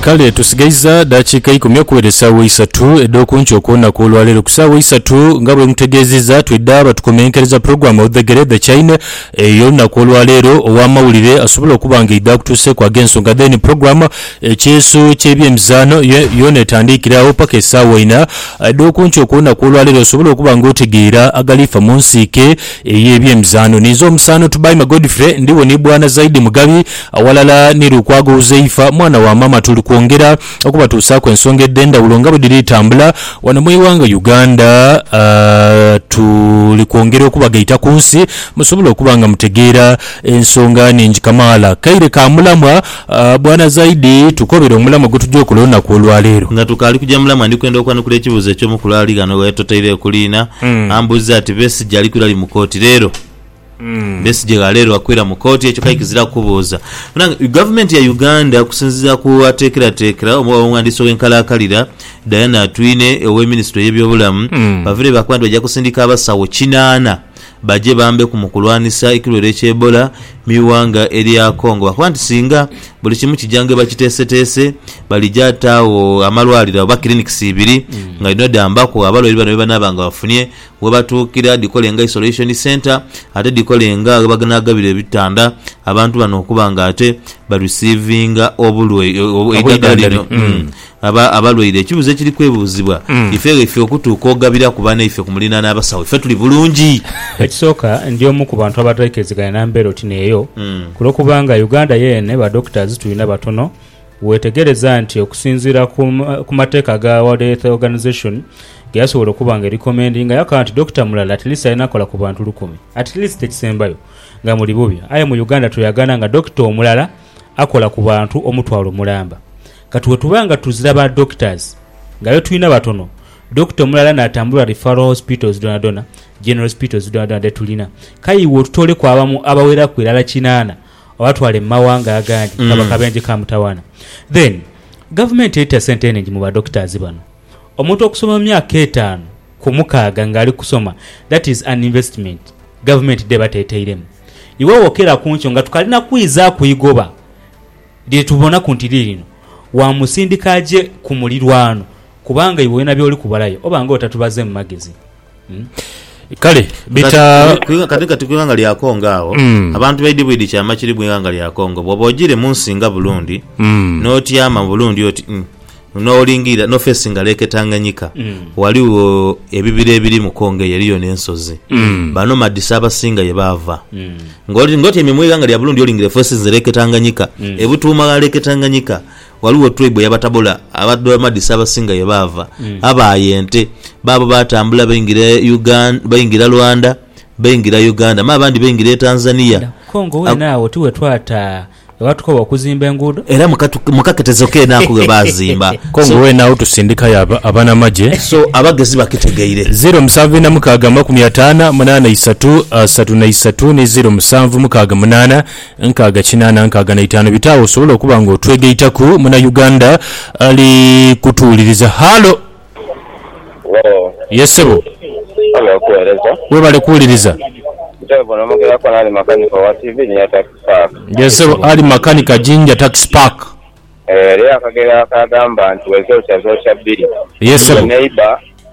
Kale tusigaiza dakiika ikumi okuwera esaawa isatu edh'oku nkyo okwona kw'olwa leero ku saawa isatu nga bwe mutegeezizza twidha batukomenkereza pulogulaamu Odhegere The Chain ey'olunaku olwa leero ow'amawulire asobola okuba nga eidha akutuuseeku ag'ensonga then pulogulaamu Ekyeeso ky'ebyemizaano yo yoona etandiikire agho paka esaawa ina edh'oku nkyo okwona kw'olwa leero osobole okuba nga otegeera agali fa mu nsiike ey'ebyemizaano. Ninze omusaano Tubaime Godfrey ndhi wo ni Bwana Zaidi Mugabi Aghalala ni Lukwago Huzaifa, mwana wa maama tuli kwongera okubatuusaaku ensonga edh'endhawulo nga bwe dhiri tambula wano mu ighanga Uganda. Tuli kwongera okubagaita ku nsi musobole okuba nga mutegeera ensonga nhingi kamaala. Kaire ka mulamwa Bwana Zaidi, tukobere omulamwa gwe tugya okola olunaku olwaleero. Nga tukaali kugya mulamwa ndi kwenda okwanukula ekibuuzo eky'omu ku lwali ghano ghe totoire okuliina. Ambuuzizza ati, Besigye ali kwirali mu kooti leero? Besigye ghaleerwa kwira mu kooti ekyo kale kiziraku kubuuza. Banange gavumenti ya Uganda okusinziira ku ateekerateekera omu w'abaghandiisi ow'enkalaakalira Diana Atwine owe minisitule y'ebyobulamu baviire baakoba nti baja kusindika abasawo kinaana baje bambeku mu kulwanisa ekirwaire kya Ebola mu ighanga erya Congo baakoba nti singa buli kimu kija ng'ebakiteeseteese balija taagho amalwaliro oba clinics ibiri nga dhino dhambaku abalwaire bano bebanaaba nga bafunye ghebatuukira dhikole nga Isolation Centre ate dhikole nga ghebanaagabira ebitanda abantu bano okuba nga ate barisiivinga eidhagala lino abalwaire. Ekibuuzo ekiri kwebuuzibwa ife ghaife okutuuka ogabiraku banaife ku muliraano abasawo ife tuli bulungi? Ekisooka ndi omu ku bantu abataikiriziganya na mbeera oti n'eyo ku lw'okubanga Uganda yeene ba doctors tulina batono. Weetegereza nti okusinziira ku mateeka ga World Health Organization ge yasobola okuba nga erikomendinga, yakagha nti dokita mulala at least alina kola ku bantu lukumi at least ekisembayo nga muli bubi. Aye mu Uganda tweyagana nga dokita omulala akola ku bantu omutwalo mulamba. Kati wetuba nga tuzira ba doctors nga be tulina batono, dokita omulala natambula referral hospitals dhonadhona, general hospitals dhonadhona dhe tulina, kaiwe otutooleku abamu abaweraku irala kinaana Obatwale mu mawanga agandi nga bakabenje ka mutawana. Then gavumenti eita sente eningi mu ba doctors bano. Omuntu okusoma emyaka etanu ku mukaaga nga ali kusoma that is an investment gavumenti dheba teteiremu. Iwe wokera kunkyo nga tukalina kwiza kuigoba lyetubonaku nti lirino wamusindika aje ku mulirwano kubanga iwe olina byoli kubalayo oba nga otatubazemu magezi. Kale bita. Kati kati ku ighanga lya Congo agho abantu baidhi bwidhi kyama kiri mu ighanga lya Congo. Bwoba ojire mu nsi nga Burundi n'otyama mu Burundi oti mm n'olingiirira n'ofeesi nga Lake Tanganyika ghaligho ebibira ebiri mu Congo eyo eriyo n'ensozi Banomadisi abasinga ye baava. Ng'otyaime mu ighanga lya Burundi olingirira efeesi ze Lake Tanganyika, ebutuuma gha Lake Tanganyika Ghaligho twaibu ey'Abatabola Abadramadi Ssabasinga ye baava, abaaya ente. Baabo baatambula baingira Uganda, baingira Rwanda, baingira Uganda me abandi baingira e Tanzania. Ku Congo weene agho ti we twata ghe batukoba okuzimba enguudo? Era mu katu, mu kaketezo keene ako ghe baazimba. Congo So, weene agho tusindikayo aba, abanamagye. so abagezi bakitegeire. Ziro musanvu ina mukaaga amakumi ataana munaana isatu asatu na isatu ni ziro musanvu mukaaga munaana Nkaaga kinaana nkaaga na itaanu bita awo osobole okuba nga otwegaitaku muna Uganda ali kutuwuliriza. Hallo! Hello. Yes sebo. Webale okuwereza. Webale kuwuliriza. Nze buno mugera kona Ali makanika owa TV Jinja Tax Park. Yes sebo Ali makanika Jinja Tax Park. Eriyo akagero akagamba nti wezokya zokya bbiri. Yes sebo. Neighbor.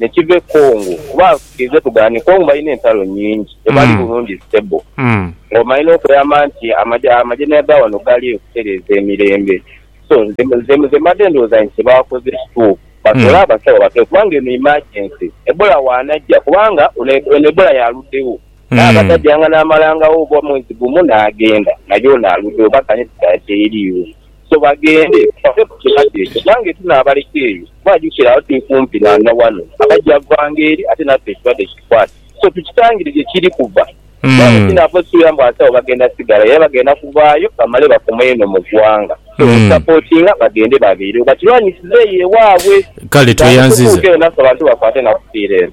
ne kiva e Congo kuba nsikiriza tugaane Congo balina entalo nnyingi tebali bulungi stable nga omanye n'okuyamba nti amajeneya ga wano gali eyo kutereeza emirembe so nze nze mbadde ndowooza nti kyebakoze kituufu batwole abasawo batoyo kubanga eno emergency Ebola waanajja kubanga eno Ebola yaaluddewo naye abatajjanga naamalangawo oba mwezi gumu naagenda naye ono aluddewo baganye tudayo teyeriiwo so bagende bave ku kirwadde ekyo kubanga etunaabaleka eyo Kuba jukira, awo tuli kumpi na na wano, abaja vanga eri, ate naffe ekirwadde kitukwate. So tukitangire gye kiri kuva. Kubanga sinaava osuubira mbu asawo bagenda sigalayo, era bagenda kuvaayo bamale bakomeyo eno mu ggwanga. So okusapootinga, bagende babeerewo, bakirwanisize eyo ewaabwe. Kale, Naye tweyanziza. tutuuke eno naffe abantu bakwate na kufiira eno.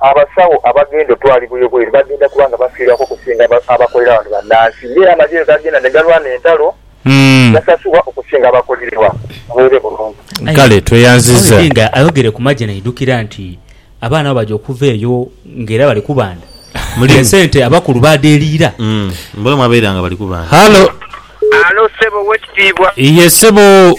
Abasawo abagenda otwalibwa ebweru bagenda kuba nga bafiirwaku okusinga abakolera wano bannansi ng'era amagye bwegagenda ne galwana entalo gasasulwa okusinga abakolererwa buweere bulungi. Aye Hon Dinga ayogere ku magye naidhukira nti abaana bwe baja okuva eyo ng'era bali kubanda mule esente abakulu baadheeriira. Halo. Halo ssebo owekitiibwa. Yee ssebo.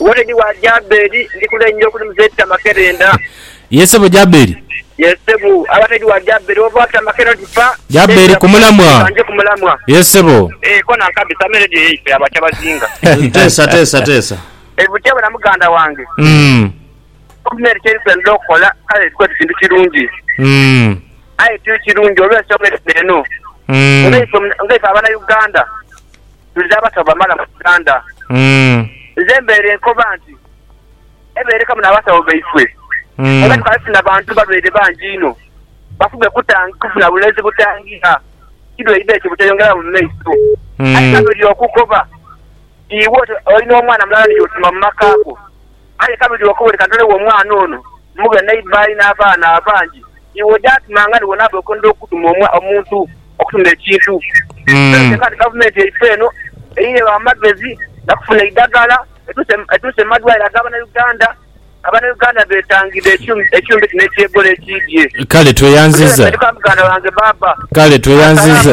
Wode di wa Jaberi, ndi kulenja okulimu zeti amakerenda. Ye sebo Jaberi. Ye sebo. Abade di wa Jaberi, ova ota amakerenda oti pa. Jaberi ku mulamwa. Banje ku mulamwa. Ye sebo. Eeh kona nkabisa ame radio yaife abo akyabazinga. Teesa teesa teesa. Ebuti bona muganda wange. Umm. Gavumenti kyeri kwendha okola kale tukoze kintu kirungi. Umm. Aye tiri kirungi olwensonga edhino eno. Umm. Nga ife nga ife abana Uganda. Twidha abasawo bamala mu Uganda. Nze mbeere nkoba nti ebeerekamu n'abasawo baifwe kuba tukaba tufuna bantu balwaire bangi inho bafuge kufuna bulezi butangira kirwaire ekyo buteyongeramu mu maiso. Aye nga buli okukoba iwe olina omwana mulala ni y'otuma mu makaago. Aye kabiri okuboneka ndholewo omwana ono, mughe neiba alina abaana abangi, iwe oja ati mangani wonaba okwendha okutuma omuntu okutunda ekintu. Ekikulu kyenka nti gavumenti yaife eno eyiregho amagezi gakufuna eidhagala etuuse mu madwaliro aga banauganda. Abanauganda betangidde ekyuma kino eky'ebola ekiidhye. Kale tweyanziza. Kale tweyanziza.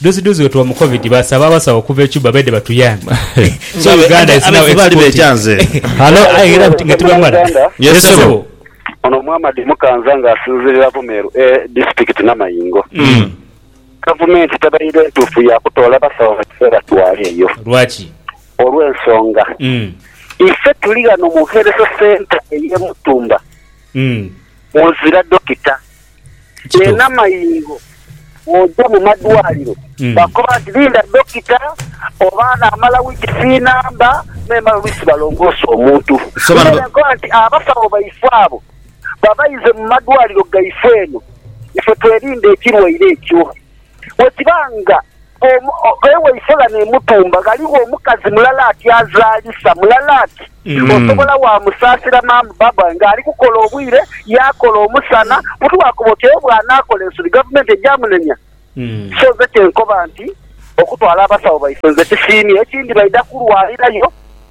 Dozidozi wetuwa mu covid basaba abasawo okuva e Cuba baidhe batuyambe so Uganda is now exporting. Ono Muhammad Mukanza nga asinzirira Bumeru A disitulikiti Namayingo, gavumenti tebaire ntuufu ya kutoola basawo ebatwala eyo olw'ensonga, Ife tuli ghano mu Health Centre ey'e Mutumba. ozira dokita. Eno amaingo bwoja mu madwaliro bakoba nti linda dokita oba anamala wikisi inamba memala oluisi balongoosa omuntu. Nze nenkoba nti abasawo baife abo babaize mu madwaliro gaife eno ife twelinde ekirwaire ekyo. Bwe kiba nga omukaire waife ghano e Mutumba ghaligho omukazi mulala ati azaalisa, mulala ati osobola waamusaasira ma'am Barbara ng'ali kukola obwire yaakola omusana, butwakoba oti aye bw'anaakola ensobi gavumenti eja munenya. So nze kye nkoba nti okutwala abasawo baife nze kisiimye. Ekindi baidha kulwalirayo.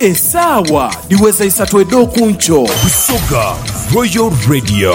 Esaawa dhiweza isatu edh'oku nkyo. Busoga Royal Radio.